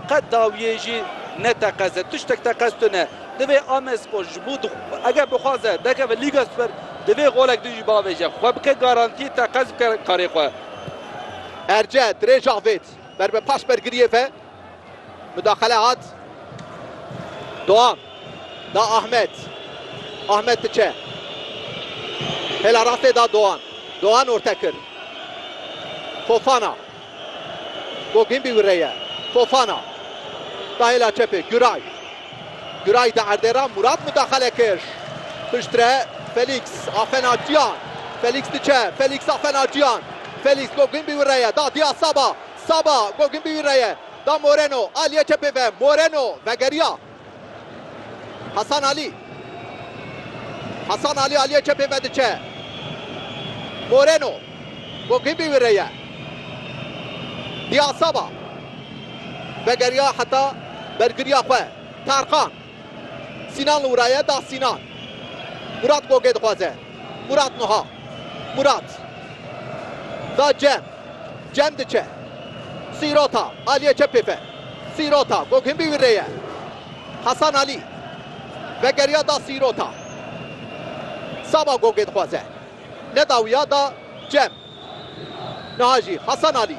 Qet dawiyê jî ne teqez e. Tiştek teqez tune ne. Divê Amespor ji bo eger bixwaze derkeve Lîga Super divê golek din jî bavêje. Xwe bike garantiyê teqez bike karê xwe. Erce, dirêj avêt ber bi pas bergiriyê ve. Mudaxele hat. Doam da Ahmet. Ahmet diçe. Hêla rastê da Doan. Doan orte kir. Fofana. Bogin bi wire ye. Fofana. Da hêla çepê. Güray. Güray di erdê re. Murat mudaxale kir. Piştre. Felîks. A fena Ciyan. Felîks diçe. Felîks a fena Ciyan. Felîks Bogin bi wire ye. Da diya Saba. Saba. Bogin bi wire ye. Da Moreno. Aliye çepê ve. Moreno. Vegeriya. Hasan Alî. Hasan Alî aliyê çepê ve diçe. Moreno. Gogibi wî re ye. Diyasaba. Vegeriya heta bergiriya xwe. Tarkan. Sînan li wira ye da Sînan. Murat Gogê dixwaze. Murat nuha. Murat. Da Cem. Cem diçe. Sîrota aliyê çepê ve. Sîrota ku hûn bî wî rê ye. Hasan Alî vegeriya da Sîrota. Saba gogê dixwaze. Nedawiya da Cem. Niha jî Hasan Alî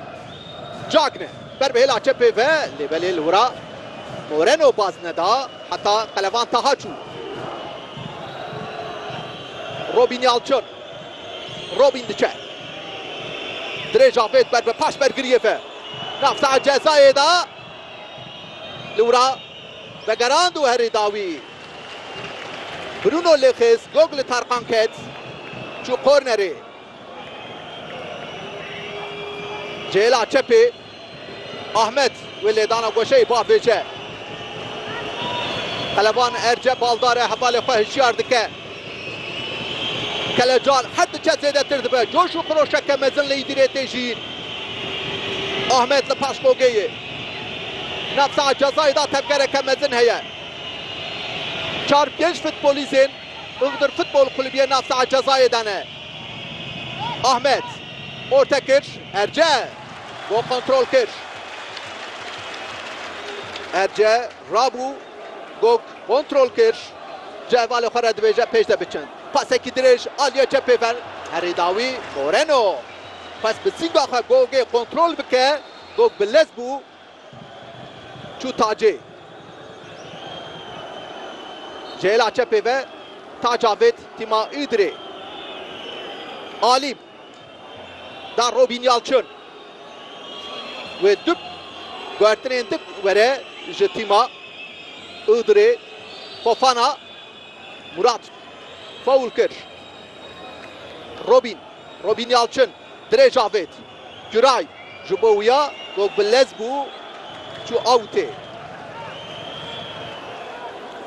cakne ber bi hêla çepê ve lê belê li wira Moreno baz neda heta qelevan taha çû. Robîn Yalçin. Robîn diçe. Dirêj avêt ber bi paş bergiriyê ve. Navçeya cezayê de lûra vegerand û herî dawî Bruno lê xist gog li Tarkan ket çû kornerê. Ji hêla çepê Ahmet wê lêdana goşeyê biavêje. Qeleban erce baldar e hevalê xwe hişyar dike. Kelecar her diçe zêdetir dibe, coş û xiroşeke mezin li Îdirê tê jiyîn. Ahmet li paş Mogeyê, navçeya Cezayê da tevgereke mezin heye. Çar pênc futbolîzên Iğdır Futbol Kulübiyê navçeya Cezayê de ne. Ahmet, orte kir, Erce, bo kontrol kir. Erce, rabû. Gog kontrol kir, cih bala xwe re dibêje pêş de biçin. Pasekî dirêj aliyê çepê ver herî dawî Moreno xwest bi sînga xwe Gogê kontrol bike, Gog bi lez bû çû Tacê. Ji hêla çepê ve Tac avêt tîma Îdirê. Alî. Da Robin Yalçın wê dub guhertinên dik were ji tîma Iğdırê. Fofana Murat faul kir. Robin Robin Yalçın dirêj avêt. Güray ji bo wiya ku bi lez bû çû awtê.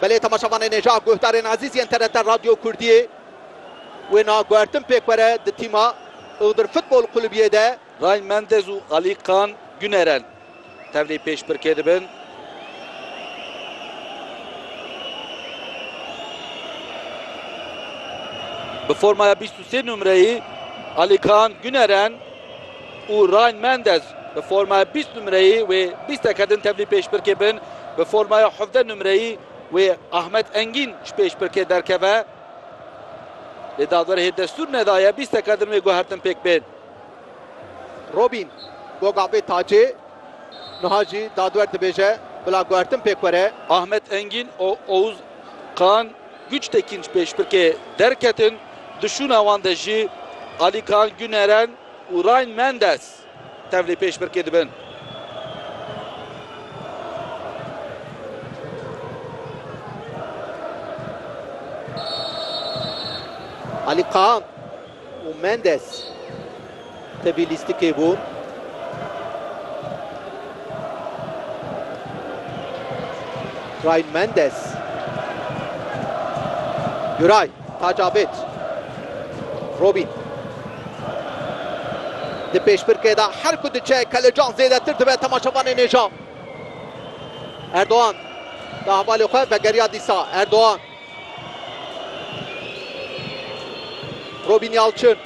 Belê temaşevanê nêja guhdarên ezîz yên TRT Radyo Kurdiyê. Wêna guhertin pêkwere di tîma Iğdır Futbol Kulübiyê de. Ryan Mendez û Ali Kaan Güneren tevlî pêşbirkê dibin. Bi formaya bîst û sê numreyî Ali Kaan Güneren û Ryan Mendez bi formaya bîst numreyî wê bîsteke din tevlî pêşbirkê bin. Bi formaya hevdeh numreyî wê Ahmet Engîn ji pêşbirkê derkeve. Lê dadverhê destûr nedaye bîsteka din wê guhertin pêk bên. Robîn, Goga bê tacê. Niha jî dadwer dibêje bila guhertin pêk were. Ahmet Engîn û Oğuz Kaan Güçtekin ji pêşbirkê derketin, di şûna wan de jî Alî Kaan Güneren û Ryan Mendes. Tevlî pêşbirkê dibin. Alî Kaan û Mendes tevî lîstikê bûn. Ryan Mendes. Güray. Tacabet Robîn di pêşbirkê de her ku diçe kelecan zêdetir dibe temaşevanên nêja. Erdogan di hevalê xwe vegeriya dîsa. Erdogan Robîn Yalçin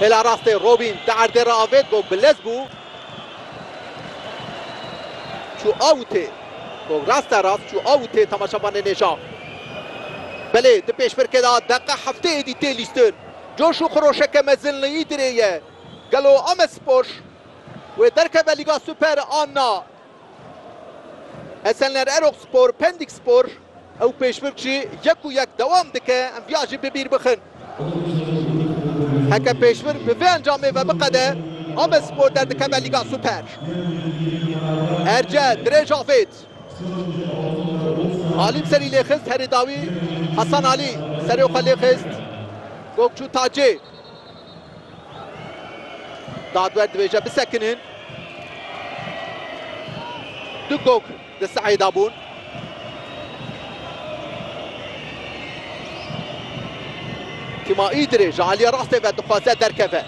hêla rastê Robîn di erdê re avêt got bilez bû çû awitê. Gol rast e rast çû aw û tê temaşevanê nêşa. Belê di pêşbirkê de deqe hefteyê dî tê lîstin. Coş û xiroşeke mezin li Îdirê ye. Gelo Amedspor wê derkeve Lîga Super an na? Esenler Erokspor, Pendikspor? Ew pêşbirk jî yek û yek dewam dike em viya jî bi bîr bixin. Heke pêşbirk bi vê encamê ve biqede, Abedspor derdikeve Lîga Super. Erce dirêj avêt. Alî bi serî lêxist herî dawî. Hasan Alî serê xwe lêxist. Gokçû Tacê. Dadwer dibêje bisekinin. Du gog di sehê de bûn. Tîma Îdirê ji aliyê rastê ve dixwaze derkeve.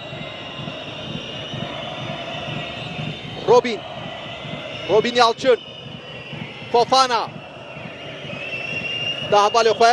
Robîn. Robîn Yalçin. Fofana. Da hevalê xwe.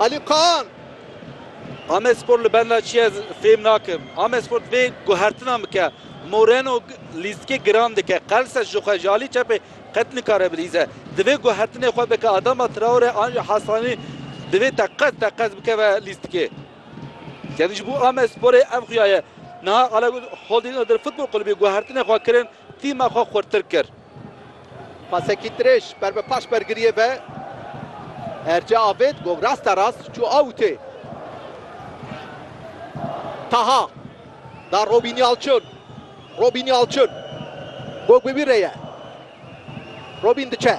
Alî Kaan, Amedspor li benda çi ye fêm nakim. Amedspor divê guhertina bike. Moreno lîstikê giran dike. Qelse ji xwe ji alî çepê qet nikare bilîze. Divê guhertinê xwe bike. Adama Traore an jî Hasanî divê teqez teqez bikeve lîstikê. Yanî ji bo Amedsporê ev xuya ye. Niha qala got Holding Other Futbol Kulubî guhertinê xwe kirin, tîma xwe xurtir kir. Pasekî dirêj ber bi paş bergiriyê ve Erce avêt gog rasta rast çû awutê. Taha da Robîn Yalçin. Robîn Yalçin. Gog bi wî re ye. Robîn diçe.